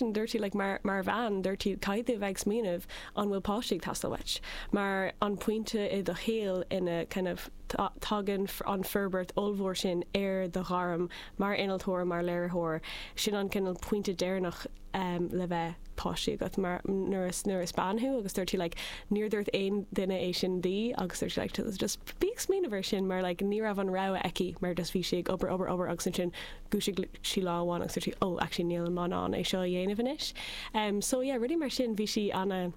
dúirt sí, like, mar, mar bhean, dúirt sí, caithfidh tú a bheith ag smaoineamh an bhfuil páistí ag teastáil uait, mar an pointe i do shaol ina, kind of, tagann an fhorbairt ollmhór sin ar do ghairm mar innealtóir, mar léiritheoir, sin an cineál pointe deireanach ehm le bheith páistí agat, mar nuair is, nuair is bean thú agus dúirt sí, like, níor dúirt aon duine é sin di agus dúirt sí, like, just bí ag smaoineamh ar sin mar, like, ní raibh an rogha aici mar just bhí sí ag obair, obair, obair agus ansin dhúisigh sí lá amháin agus dúirt sí oh actually níl mé in ann é seo a dhéanamh anois em so yeah rudaí mar sin bhí sí ana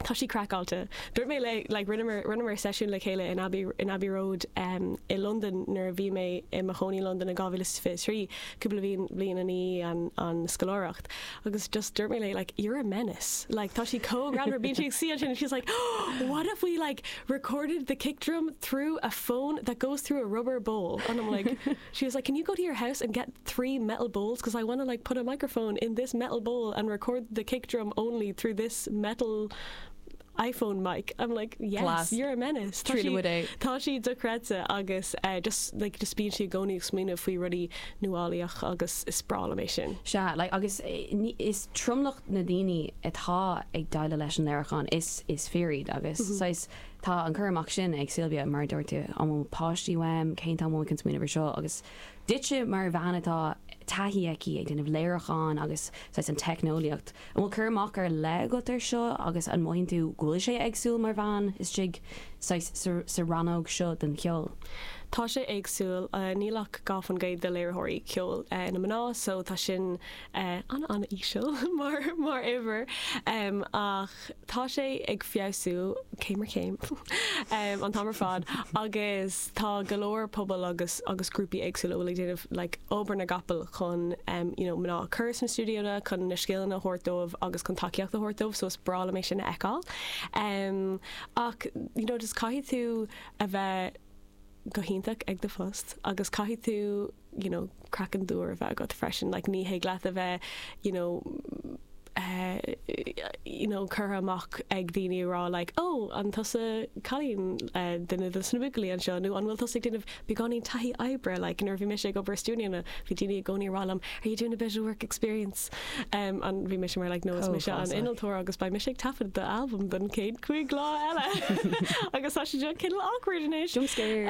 tá sí craiceáilte dúirt mé léi like rinneamar rinneamar seisiún le chéile in Abbey in Abbey Road em i Londain nuair a bhí mé i mo chónaí i Londain in 2023 cúpla bliain an í an an scoláireacht agus just dúirt mé léi like you're a menace like tá sí chomh ran bíonn sí sí sin she's like oh, what if we like recorded the kick drum through a phone that goes through a rubber bowl and I'm like She was like, can you go to your house and get three metal bowls because I want to like put a microphone in this metal bowl and record the kick drum only through this metal iPhone mic. I'm like, yes, Class. you're a menace. Tá sí, tá sí dochreidte agus eh, just like, just bíonn sí i gcónaí ag smaoineamh faoi rudaí nuálaíoch agus is breá liom é sin. Sea, like, agus eh, ní- is tromlach na daoine atá ag déileáil leis an léiriúchán is is fir iad agus saghas Tá an cur amach sin ag Sylvia, mar a dúirt tú, an bhfuil páistí uaim, cén t-am a bhfuil mé chun smaoineamh ar seo, agus duitse mar bhean atá taithí aici ag déanamh léiriúcháin agus saghas an teicneolaíocht, an bhfuil cur amach ar leith agat ar seo agus an mothaíonn tú go bhfuil sé éagsúil mar bhean istigh saghas sa rannóg seo den cheol? Tá sé éagsúil, níl ach dhá faoin gcéad de léiritheoirí ceoil ina mná so tá sin an an-íseal mar mar uimhir ach, Tá sé ag feabhsú céim ar chéim an t-am ar fad agus tá go leor pobal agus agus grúpaí éagsúla a bhfuil ag déanamh like obair na gcapall chun em you know mná a chur sna stiúideonna chun na scileanna a thabhairt dóibh agus chun tacaíocht a thabhairt dóibh so is breá liom é sin a fheiceáil em ach you know just caithfidh tú a bheith go hiontach ag do phost agus caithfidh tú you know, craiceann tiubh a bheith agat freisin, like ní thig leat a bheith, you know, you know, curtha amach ag daoine ag rá like, ó, an tusa cailín, duine de sna buachaillí anseo, nó an bhfuil tusa ag déanamh beagáinín taithí oibre, like nuair a bhí mise ag obair i stiúideonna, bhí daoine i gcónaí ag rá liom, are you doing a bit of work experience? and bhí mise mar like no is mise an innealtóir agus beidh mise ag taifead do albam don chéad cúig lá eile agus tá sé seo cineál awkward anois. Jump scare.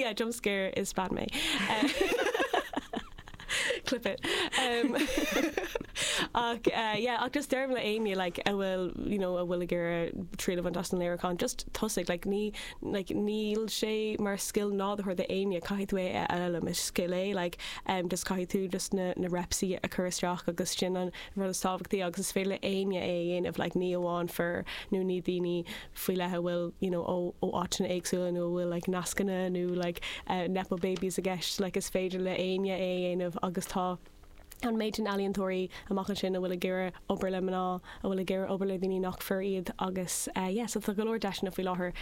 Yeah jump scare is bean mé. Clip it. Ach yeah ach just deirim le héinne like a bhfuil you know a bhfuil ag iarraidh triail a bhaint as an léiriúchán just tosaigh like ní like, níl sé mar scil nádúrtha do éinne, caithfidh tú é a fhoghlaim, is scil é, like, em, just caithfidh tú just na, na repsaí a chur isteach agus sin an rud is tábhachtaí agus is féidir le éinne é a dhéanamh, like, ní amháin fir nó ní daoine faoi leith a bhfuil, you know, ó, ó áiteanna éagsúla nó a bhfuil, like, nascanna nó, like, eh, nepo babies i gceist, like, is féidir le éinne é a dhéanamh agus tá. an méid sin ealaíontóirí amach ansin a bhfuil ag iarraidh obair le mná, a bhfuil ag iarraidh obair le daoine nach fir iad agus yeah so tá go leor deiseanna faoi láthair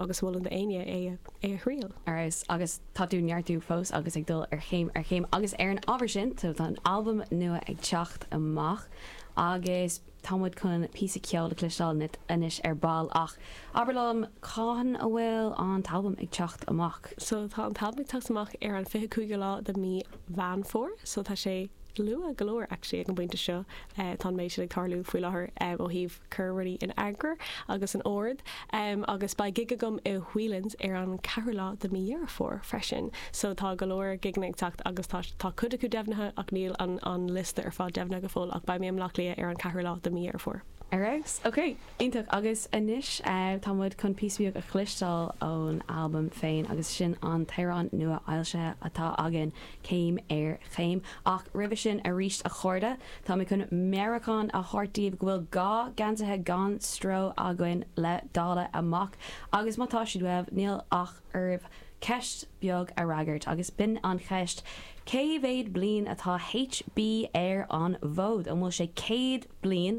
agus mholfainn do éinne é a thriail. Arís, agus tá tú ag neartú fós agus ag dul ar céim ar chéim agus ar an ábhar sin tá tá an albam nua ag teacht amach agus, Tá muid chun píosa ceoil a chloisteáil uait anois ar ball, ach abair liom, cathain a bhfuil an t-albam ag teacht amach? So tá an t-albam ag teacht amach ar an fiche cúigiú lá de mí Mheán Fómhair, so tá sé luath go leor actually ag an bpointe seo, tá an méid sin ag tarlú faoi láthair ó thaobh cur rudaí in eagar agus in ord. Em agus beidh gig agam i Whelan's ar an 4ú lá de mí Dheireadh Fómhair freisin so tá go leor gigeanna ag teacht agus tá, tá cuid acu deimhnithe ach níl an, an liosta ar fad deimhnithe go fóill ach beidh mé i mBleá Cliath ar an 4ú lá de mí Dheireadh Fómhair. Ar fheabhas, ok, iontach agus anois eh tá muid chun píosa beag a chloisteáil ón albam féin agus sin an t-amhrán nuafhoilsithe atá againn céim ar chéim. Ach roimhe sin aríst a chairde, tá mé chun meabhrúchán a thabhairt daoibh go bhfuil dhá geansaithe gan stró againn le dáileadh amach, agus má tá siad uaibh, níl ach oraibh ceist beag a fhreagairt, agus b'in an cheist, Cé mhéad bliain atá HB ar an bhfód? An bhfuil sé céad bliain